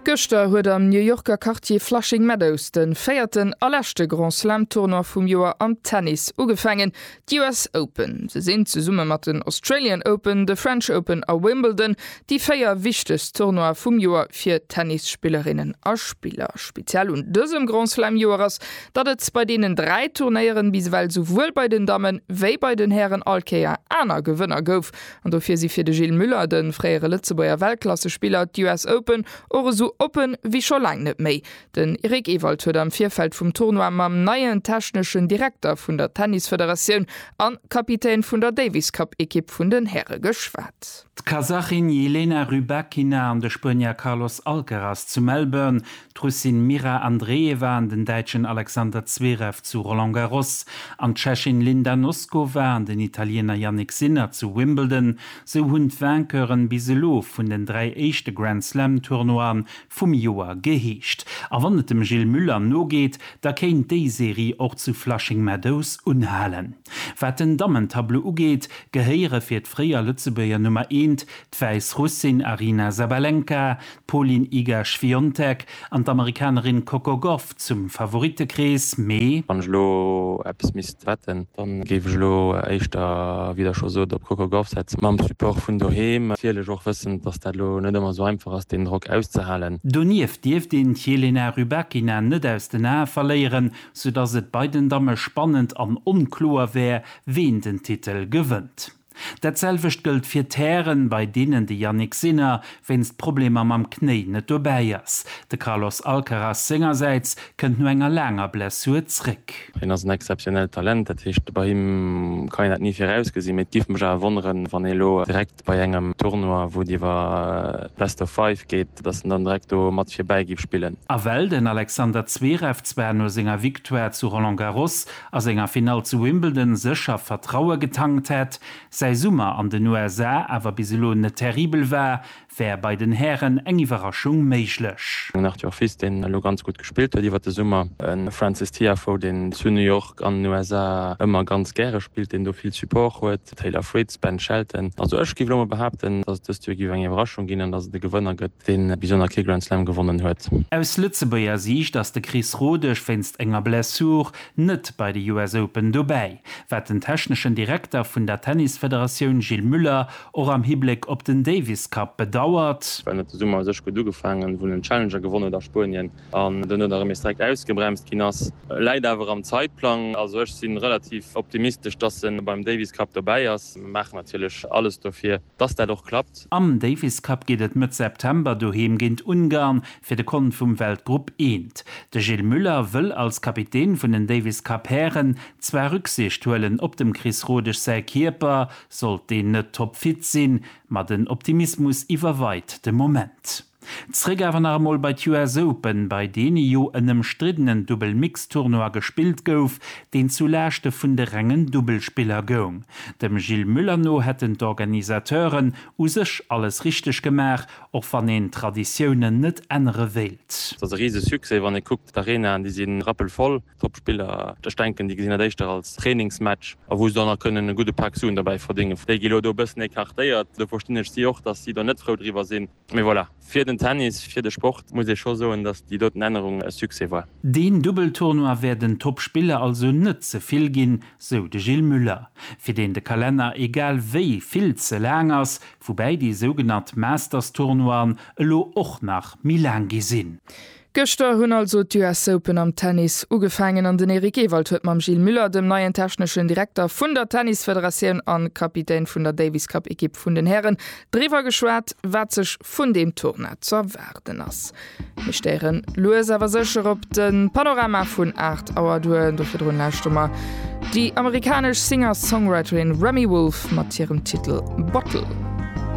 Gëschter huet am New Yorker Quartier Flushing Meadows de véierten a leschte Grand Slam Tournoi vum Joer am Tennis ugefaangen. D'US Open. Se sinn, zesumme mat den Australian Open, de French Open a Wimbledon, déi véier wichtegst Tournoie vum Joer fir Tennisspillerinnen a spiller. Speziell un dësem Grand Slam Joer ass, datt et bei deenen dräi Turnéieren bis ewell souwuel bei den Dammen, wéi bei den Hären all Kéier aner Gewënner gouf. An dofir si fir de Gilles Muller, de fréiere Lëtzebuerger Weltklassespiller, d'US Open och esou oppe wéi scho laang net méi. Den Eric Ewald huet am Virfeld vum Tournoi mam neien techneschen Direkter vun der Tennisfederatioun a Kapitän vun der Davis-Cup-Ekipp vun den Häre geschwat. D'Kasachin Jelena Rybakina an de Spuenier Carlos Alcaraz zu Melbourne, d'Russin Mira Andreeva an den Däitschen Alexander Zverev zu Roland Garros an d'Tschechin Linda Noskova an den Italiener Jannik Sinner zu Wimbledon, sou hunn d'Vainqueuren bis elo vun den dräi éischte Grand-Slam-Tournoie vum Joer geheescht. A wann et dem Gilles Muller nogeet, da kéint déi Serie och zu Flushing Meadows unhalen. Wat den Dammentableau ugeet, gehéiere fir d'fréier Lëtzebuerger Nummer eent D'Wäissrussin Aryna Sabalenka, d'Polin Iga-Świontek an d'Amerikanerin Coco Gauff zum Favorittekrees, mee. Wann ech elo eppes misst wetten, dann géif ech elo éischter, wéi der scho sot, op d'Coco Gauff setzen. Mam Support vun doheem natierlech och, wëssend, dass dat elo net ëmmer esou einfach ass, deen Drock auszehalen. Donieft dierft een d'Jelena Rybakina net aus den Ae verléieren, soudass et bei den Damme spannend an onkloer wär, ween den Titel gewënnt. Dat selwecht gëllt fir Terrainen, bei deenen de Jannik Sinner wéinst Problemer mam Knéi net dobäi ass. De Carlos Alcaraz sengersäits kënnt no enger laanger Blessur zréck. Hien ass en exzeptionellt Talent, dat heescht, bei him kann een dat ni virausgesinn. Mee et géif mech awer wonneren, wann ee lo direkt bei engem Tournoi, wou et iwwer Best of Five geet, datt en dann direkt do mat virbäi géif spillen. A well den Alexander Zverev zwar no senger Victoire zu Roland Garros a senger Finall zu Wimbledon sécher Vertraue getankt hätt. Säi Summer an den USA awer bis elo net terribel war, wär bei den Hären eng Iwwerraschung méiglech. Den Arthur Fils, deen elo ganz gutt gespillt huet iwwer de Summer. E Frances Tiafoe, deen zu New York an den USA ëmmer ganz gäre spillt, deen do vill Support huet, Taylor Fritz, Ben Shelton. Also ech géif elo emol behaapten, dass et dëst Joer géif eng Iwwerraschung ginn an dass et e Gewënner gëtt. deen bis elo nach kee Grand Slam gewonnen huet. Aus Lëtzebuerger Siicht ass de Chris Rodesch wéinst enger Blessur net bei de US Open dobäi, wat den techneschen Direkter vun der Tennisfederatioun Gilles Muller och am Hibléck op den Davis Cup bedauert. Well net de Summer u sech gutt ugefaangen, wou en den Challenger gewonnen huet a Spuenien an duerno da remes direkt ausgebremst ginn ass, läit awer am Zeitplang. Also ech sinn relativ optimistesch, dass en beim Davis Cup dobäi ass, maachen natierlech alles dofir. Dass dat och klappt. Am Davis Cup geet et Mëtt September doheem géint Ungarn fir de Kont vum Weltgrupp Eent. De Gilles Muller wëll als Kapitän vun den Davis Cup Hären zwar Rücksicht huelen op dem Chris Rodesch säi Kierper, sollt deen net toppfit sinn, ma den Optimismus iwwerweit de Moment. Zréck awer nach emol bei d'US Open, bei deene jo en ëmstriddenen Dubbel-Mixed-Tournoi gespillt gouf, deen zu Laaschte vun de rengen Dubbelspiller goung. Dem Gilles Muller no hätten d'Organisateuren u sech alles richteg gemaach, och wann een d'Traditiounen net ännere wéilt. Et ass e rise Succès, wann ee kuckt, d'Arenaen, déi si rappelvoll, d'Toppspiller, ech denken, déi gesinn dat éischter als Trainingsmatch a wou se dann nach kënnen e gudde Pak Suen derbäi verdéngen, déi gi elo do e bëssen écartéiert. Do verstinn ech si och, datt si do net frou driwwer sinn. Mee voilà, fir den Tennis, fir de Sport muss ee scho soen, datt déi doten Ännerung e Succès war. Deen Dubbeltournoi wär den Toppspiller also net ze vill ginn, sou de Gilles Muller, fir deen de Kalenner egal wéi vill ze laang ass, woubäi déi sougenannt Masters-Tournoien elo och nach méi laang gi sinn. Gëschter hunn also d'US Open am Tennis ugefaangen an den Eric Ewald huet mam Gilles Muller, dem neien techneschen Direkter vun der Tennisfederatioun a Kapitän vun der Davis Cup Ekipp vun den Hären, driwwer geschwat, wat sech vun deem Tournoi z'erwaarden ass. Mir stéieren lues awer sécher op de Panorama vun 8 Auer duer. Do virdrun lauschtere mer déi amerikanesch Singer-Songwriterin Remi Wolf mat hirem Titel Bottle.